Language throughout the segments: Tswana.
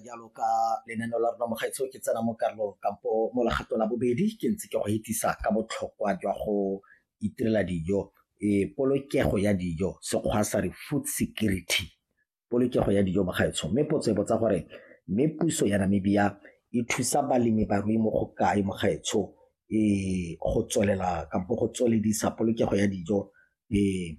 jalo ka lenaneo la rona mogaetsho ke tsena mo karolong kampo mo legato la bobedi ke ntse ke go itsisa ka botlhokwa jwa go itirela dijo e polokego ya dijo sekgwa sa re food security polokego ya dijo mogaetsho mme potso e botsa gore mme puso ya namibia e thusa balemi barui mo go kae mogaetsho e go tswelela kampo go tsweledisa polokego ya dijo e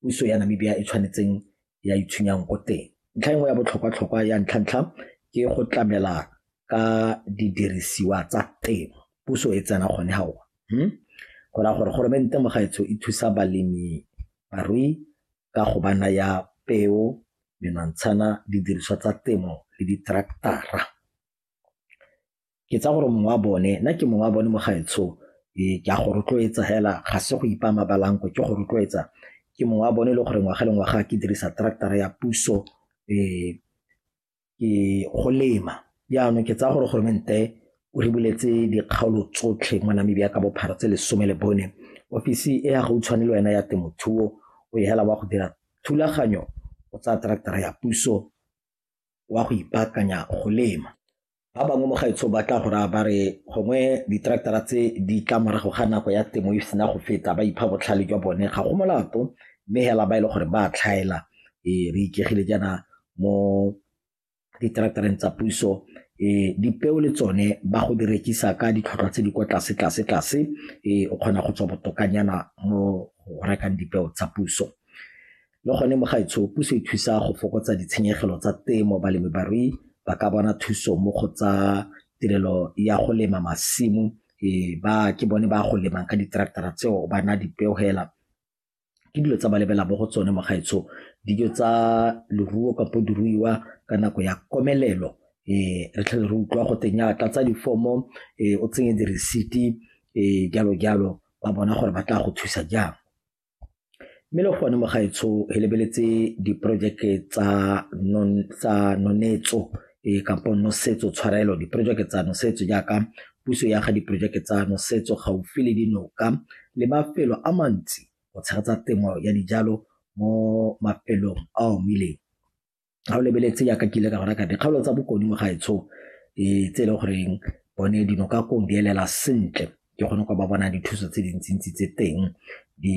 puso ya Namibia e tshwanetseng ya itshwenyang ko teng. Ntlha e nngwe ya botlhokwa-tlhokwa ya ntlha-ntlha ke go tlamela ka didirisiwa tsa temo, puso e tsena gone ga ona. Hmm? Go raya gore goromente mo gaetsho e thusa balemi barui ka go ba naya peo, menwantshana, didiriswa tsa temo le ditraktara. ke tsaya gore mongwe wa bone nna ke mongwe wa bone mo gaetsho ee, ke a go rotloetsa hela ga se go ipa mabalanko ke go rotloetsa ke mongwe wa bone e le gore ngwaga le ngwaga ke dirisa tractara ya puso um ke go lema jaanong ke tsaya gore goromente o re buletse dikgaolo tsotlhe mo namibia ka bophara tse lesome le bone ofisi e ya gautshwane le wena ya temothuo o e hela wa go dira thulaganyo o tsaya tractara ya puso wa go ipaakanya go lema Ba bangwe mo gaetsho ba tla go raya ba re gongwe diteraketara tse di tla morago ga nako ya temo e sena go feta ba ipha botlhale jwa bone ga go molato mme hela ba e le gore ba tlhaela e re ikegile jaana mo diteraktareng tsa puso e dipeo le tsone ba go di rekisa ka ditlhotlhwa tse di kwa tlase tlase tlase e o kgona go tswa botokanyana mo go rekang dipeo tsa puso Le gone mo gaetsho puso e thusa go fokotsa ditshenyegelo tsa temo balemibarui ba ka bona thuso mo go tsa tirelo ya go lema masimo e ba ke bone ba go lemang ka di-tractor-a tseo ba na dipeo hela ke dilo tsa ba lebela mo go tsone mo gaetsho dijo tsa leruo kapo diruiwa ka nako ya komelelo um re tlhele re utlwa go teng ya tlatsa difomo um o tsenye diresiti um jalo jalo ba bona gore ba tla go thusa jang Mme le gone mo gaetsho re lebeletse diporojeke tsa nonetso kampo nosetso tshwarelo diporojeke tsa nosetso jaaka puso ya ga diporojeke tsa nosetso gaufi le dinoka le mafelo a mantsi go tshegetsa temo ya dijalo mo mafelong a omileng. ga o lebeletse yaka ke ile ka go reka dikgaolo tsa bokodimo ga etsho e tse e le goreng bone dino ka kong di elela sentle ke kgone go ba bona dithuso tse dintsintsi tse teng di